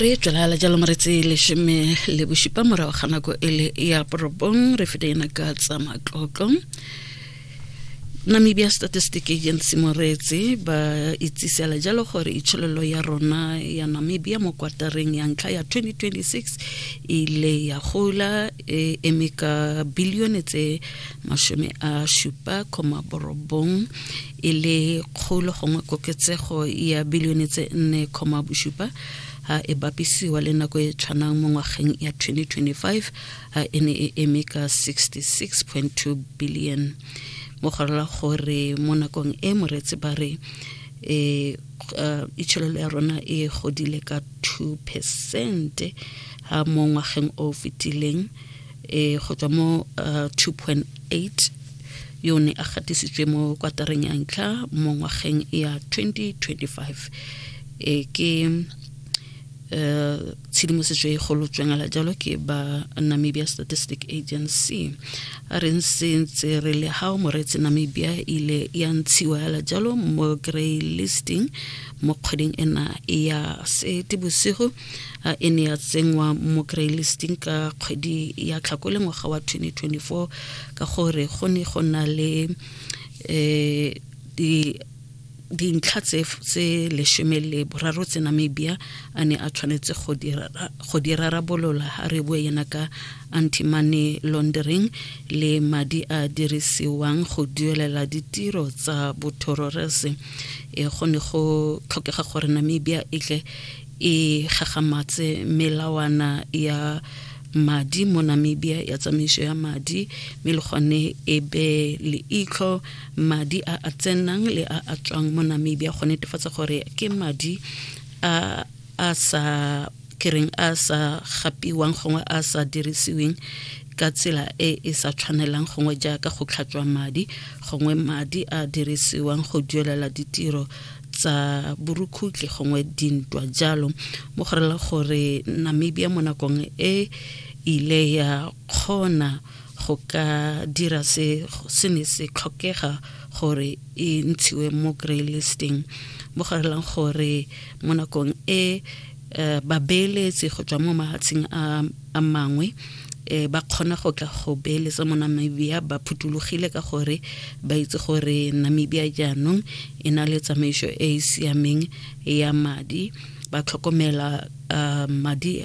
re tswelala jalo mo re tse lesome le bosupa morago ga nako e le ya porobong re fete ena ka tsa matlotlo namibia statistic agency moreetsi ba itsisela jalo gore itshololo ya rona ya namibia mo kwatareng ya ntlha ya 2026 ile ya gola e eme ka bilione tse masome a supa koma borobong e le kgolo gongwe koketsego ya bilione tse nne kgoma bosupa a e bapisiwa le nako e tshwanang mo ngwageng ya 2025 a e ne e eme ka 66.2 billion mo go rela gore mo nakong e moretse ba re e uh, itsholelo ya rona e godile ka 2 percent ha mo ngwageng o fetileng e go tswa mo uh, 2.8 yo ne a gatisitswe mo kwatareng ya ntlha mo ngwageng ya 2025 e ke Eh, tshedimosetso e golo tswengela jalo ke ba namibia statistic agency a re ntse re le gao moretse namibia ile ya ntshiwa yala jalo mo grey listing mo kgweding ena ya sete bosigo a e ne ya tsenngwa mo greylisting ka kgwedi ya tlhakole ngwaga wa 2024 ka gore go ne go na le um dintlha tse lesome le boraro tse namibia a ne a tshwanetse go di rarabolola ga re bue yena ka anti-money laundering le madi a dirisiwang go duelela ditiro tsa bothororese e go ne go tlhokega gore namibia e tle e gagamatse melawana ya madi mo Namibia ya tsamaiso ya madi mme le gone e be leitlho madi a a tsenang le a a tswang mo Namibia go netefatsa gore ke madi a a sa kereng a sa gapiwang gongwe a sa dirisiweng ka tsela e e sa tshwanelang gongwe jaaka go tlhatswa madi gongwe madi a dirisiwang go duelela ditiro tsa borukhutle gongwe dintwa jalo mo go rela gore namibia mo nakong e ile ya kgona go ka dira se se ne se tlhokega gore e ntshiwe mo grey listing mo go relang gore mo nakong e um babeeletsi go tswa mo mahatsheng a mangwe um ba kgona go tla go beeletsa mo namibia ba phutulogile ka gore ba itse gore namibia jaanong e na le tsamaiso e e siameng ya madi ba tlhokomela um madi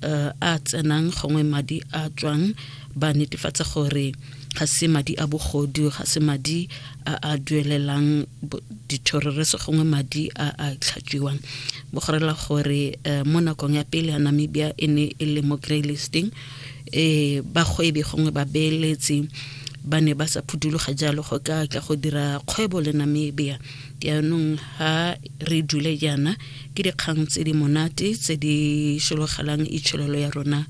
uh, a tsenang gongwe madi a tswang ba netefatsa gore ga se madi a bogodu ga se madi a a duelelang dithororese gongwe madi a a tlhatswiwang bogorela gore um mo nakong ya pele ya namibia e ne e le mo grey listing um bagwebi gongwe babeeletsi ba ne ba sa phuthuloga jalo go ka tla go dira kgwebo le namibia jaanong ha re dule jaana ke dikgang tse di monate tse di shologelang itshololo ya rona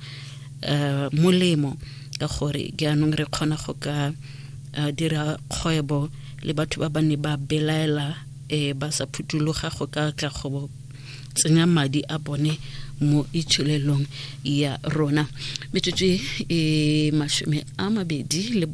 um molemo ka gore jaanong re kgona go ka dira kgwebo le batho ba ba ne ba belaela e ba sa phuthuloga go ka tla go tsenya madi a bone mo itsholelong ya rona metsotso e masome a mabedi le